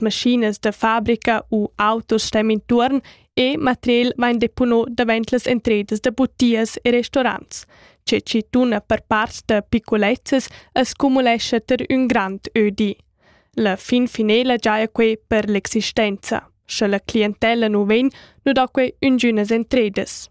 maschinas da fabrica u autos stem intuorn e material vain depono davent las entredas da butias e restaurants. Che chi tuna per part da picolezzas as cumulescha ter ün grand ödi. La fin finela giaja quei per l'existenza. Sche la clientella nu vegn, nu da quei üngünas entredas.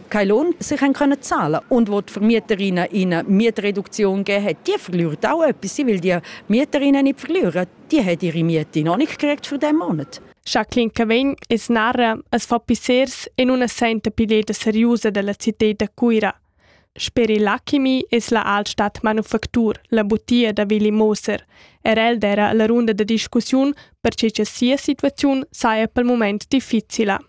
Quai l'on sich encrana zala und wird vermieter in eine Mietreduktion gegeben hat, die verliert auch etwas. Sie will die Mieterinnen nicht verlieren, die hat ihre Miete noch nicht gekriegt für diesen Monat. Jacqueline Cavegn es narra es fa pissers in una senta pileta seriosa della città da Cuira. Per il Lakimi es la Altstadt Manufactur, la butia da Willi Moser. Er el era la runda de discussiun per che sia situazione saja pel moment difficile.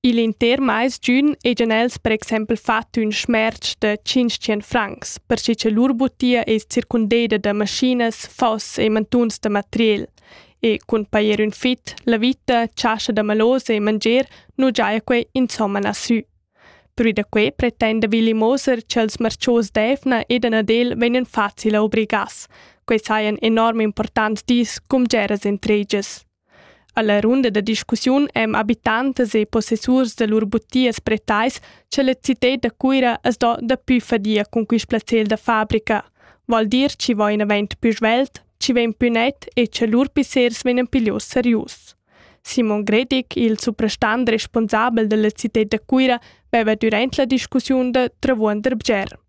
Il inter mais giun ejan els per exempel fat ün schmerz da 500 francs, perche cha lur butia es circundeda da maschinas, foss e mantuns da materiel. E cun pajer ün fit, la vita, chascha da malosa e mangier nu giaja quei insomma lassü. Pür da quei pretenda Willi Moser cha'ls marchos d'Efna ed Anadel vegnan facil obrigas. Quei sajan enorm importants dis cun bgeras intregias. Alla runda da discussiun ein habitantas e possessurs da lur butias pretais cha la citad da Cuira as do daplü fadia cun quist placer da fabrica, vol dir chi vain avaunt pü svelt, chi vegn pü net e cha lur pissers vegnan piglios serius. Simon Gredig, il suprastant responsabel dalla citad da Cuira, veva durant la discussiun da Travuonder bger.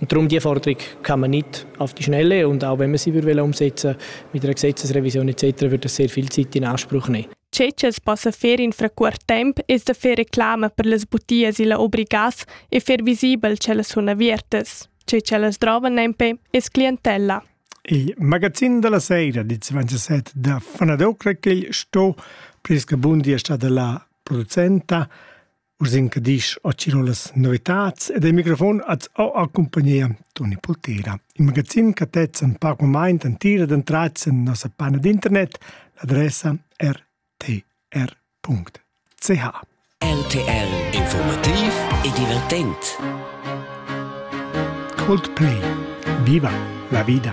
Darum die Forderung kann man nicht auf die Schnelle und auch wenn man sie würde umsetzen mit einer Gesetzesrevision etc. würde das sehr viel Zeit in Anspruch nehmen. Cecas passa ferin frequent temp e da fer reclama per las butias illa obligas e fer visibel ch'ellas sun aviertas. Che ch'ellas drovan nempe es clientella. Il magazin della sera di 27 da Fanadocra che sto Priska Bundi è stata la producenta Urs in che disch a Ciro las novitads ed il microfon ad o accompagnia Toni Poltera. Il magazin che tezza un poc moment en tira d'entrats en nossa panna d'internet, l'adressa rtr.ch. RTL Informativ e divertent. Coldplay. Viva la vida!